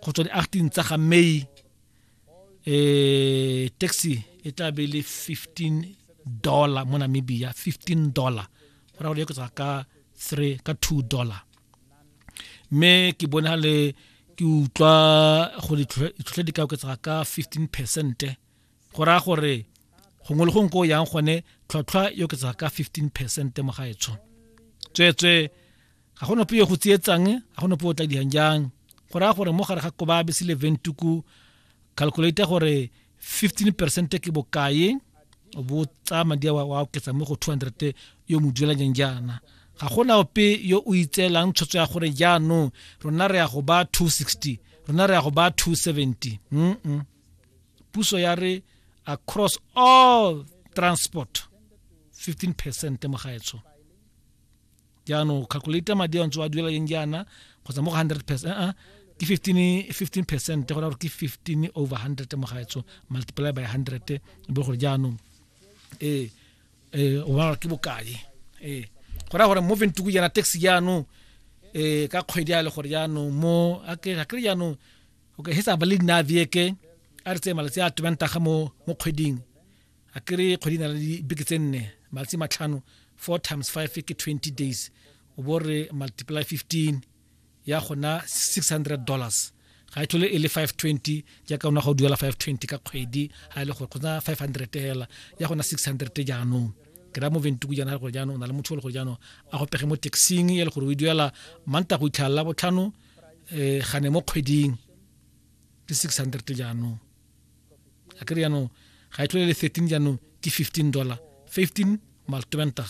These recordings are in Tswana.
go tswa di-acting tsa ga may eh taxi e tla be le 15 dollar mo namibia 15 dollar go ra go eketsa ka 3 ka 2 dollar mme ke bona le ke utlwa go ditlhotlhe di ka oketsa ka 15 percent go raya gore gongwe le gongwe ko yang gone tlhotlhwa e oketsa ka 15 percent mo gaetsho tsweetswe ga go nope yo go tsietsang ga go nope o tla diang jang go raya gore mo gare ga kobabe se le ventuku calculate gore 15 percent ke bokae o bo tsaya madi a wa oketsa mo go 200 yo mo duelanyang jaana ga gona ope yo o itseelang tshwetso ya gore jaanong rona re ya go ba 260 rona re ya go ba 270 mm -mm. puso ya re across all transport 15 percent mo gaetsho jaanong calculate madi a ntse wa duela leng jaana kgotsa mo go hundred percent uh -uh. ke 15 15 percent go raya gore ke 15 over 100 mo gaetso multiply by 100 e be gore jaanong ee ee o bona ke bokae ee go raya gore mo ventuku jaana tax jaanong um ka kgwedi a le gore jaanong mo a kry jaanong okay he sa ba le nna veke a re tseye malatsi a tobang taga mo kgweding a ke re kgwedi na le dibeke tse nne malatsi matlhano four times five ke twenty days o bo re multiply fifteen ya gona six hundred dollars ga e thole e le five twenty jaaka ona ga o duela five twenty ka kgwedi ga e le gore kgotsa five hundred fela ya gona six hundred jaanong ke ra mo ventuku jaana gore jaanong o na le motho o le gore jaanong a go pege mo taxing e le gore o e duela manta go itlhalela botlhano um gane mo kgweding ke six hundred jaanong a kere yaanong ga e tlhole le 13 jaanong ke 15 dollar 15 mal 20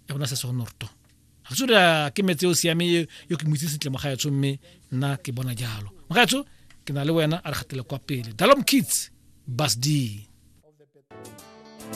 ya bona se segonorto ga se re ke metse o siame yo ke moitse sentle mogaetsho mme nna ke bona jalo mogaetsho ke na le wena a re gatele kwa pele dalom kids bas d